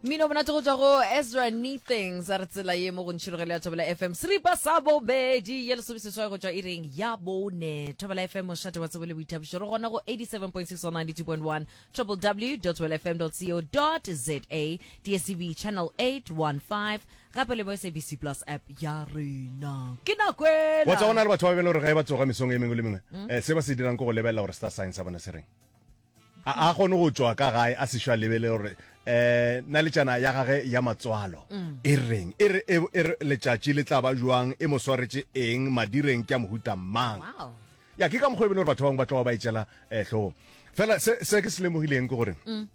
mmino monate go tswa go ezra nethings a re tsela ye mo go ntšhilogelo ya thobela fm seripa sa bobedi ye lesome seswai go tswa e reng ya bone thobela fm mošate wa tsebo le boithabišo re gona go 87.6 wa 92.1 www well fm co za dscb channel 815 gape le mo sabc plus app ya rena ke nako wa tsa go na ela le batho ba bele gore ga e ba tsoga mesong e mengwe le mengwe eh, se ba se dirang ke go lebelela gore star science sa bona se reng A a kgone go tšwa ka gae a sešo a lebele gore um naletšana ya gage ya matswalo e reng, e re e e re letšatši le tla ba bjang, e mo swaretše eng, madireng ke a mohuta mang. Wow. Ya ke ka mokgwa e bile gore batho ba bangwe ba tloga ba e tšela um hlogong. Fela se se ke se lemogileng ke gore um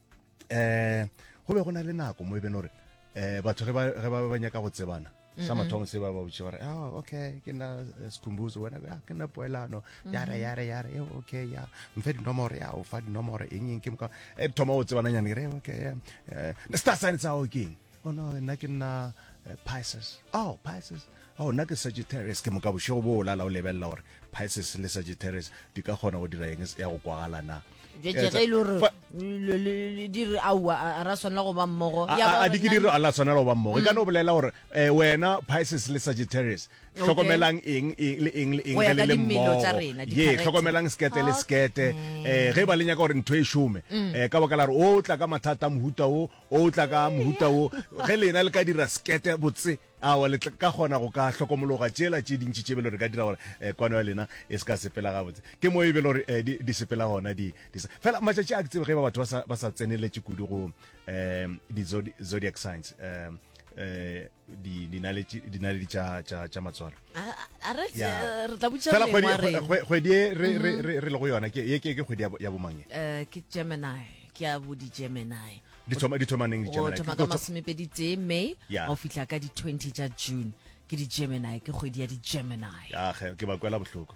go be go na le nako mo e beng gore um batho ge ba ge ba ba nyaka go tsebana sa mathomo se ba ba botse gore oh okay ke nna eh, sekhumbuzo wena ya ah, ke nna poelano yare yare yare e okay ya mfe dinomoro ya o fa dinomoro eng eng ke moka e thoma o tsebana nyane re okay eh, the star sign tsa o keng oh no nna ke nna eh, pisces oh pisces oh nna ke sagittarius ke moka bošego bo o lala o lebelela gore Pisces le Sagittarius di ka kgona go dira eng ya go kwagala na jetse ge e le gore le- le- le dire aowa a- a ra swanela go ba mmogo Ya ba a di ke gore dire a la tshwanela go ba mmogo e ka no bolela gore eh, wena Pisces le Sagittarius hlokomelang eng eng le eng le eng Go ya ge le ka le dimelo mmogo tsa rena, ye di-character. hlokomelang skete le skete eh ge ba le nyaka gore ntho e šome eh ka baka la re o tla ka mathata a mohuta o o tla ka mohuta o ge lena le ka dira skete botse Awa, le tla ka kgona go ka hlokomologa tšela tše dintši tše belo re ka dira gore eh, kwano ya lena e se ka sepela gabotse. Ke mo e belo re eh, di, di sepela gona di, di sa. Fela matšatši a ke tsebe ge ba batho ba sa, ba sa tseneletše kudu go eh, di zodi, zodiac signs eh, eh, di, dinaletši- dinaledi tša tša- tša matswalo A- a- a re Ya. eh, re tla butša fela kgwedi lengwa re- kgwe- kgwedi e re- re- re- re lego yona ke ye ke ke kgwedi ya bo- ya bomang ye Eh, ke gemini ke a bo di-gemini di thoma di thoma neng di Gemini thoma ka masomepedi tee may yeah. o fihla ka di 20 tša june ke di gemini ke kgwedi ya di gemini ya ge ke ba kwela bohloko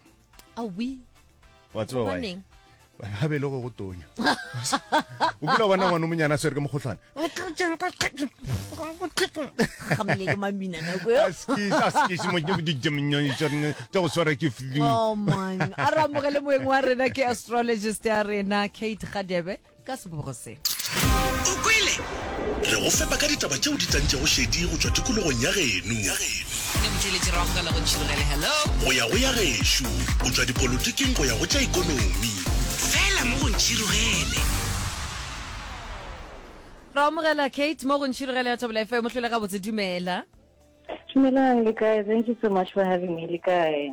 a wi wa tseba wa ha be le go go tonya o kula bona ngwana monyana swere ke mogotlhwana tsa go swara ke flu oh, a re amogele moeng wa rena ke astrologist ya rena kate gadebe ka sebogo se. O kwele? Re go fepa ka ditaba tšeo di tlantšego šedi go tšwa tikologong ya geno. Go ya go ya gešo, go tšwa dipolotiking go ya go tša ikonomi. Fela mo go Ntšhirogele. Ra amogela Kate mo go Ntšhirogele ya Thobela FM. Mohlole gabotse, dumela. Dumelang, le kae? Thank you so much for having me. Le kae?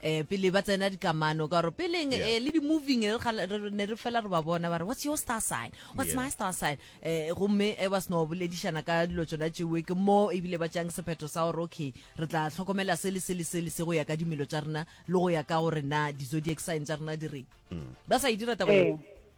eh pele ba tsena dikamano ka gore peleng yeah. eh, le di-moving ne re fela re ba bona ba re what's your star sign what's yeah. my star sign eh gomme e ba seno boledišana ka dilo tsona tšewe ke mo ebile ba tšang sephetho sa gore okay re tla tlhokomela se le se le se le se go ya ka dimelo tša rena le go ya ka gore na di-zodiac sign tša rena di reng mm. ba sa e dira taba eh.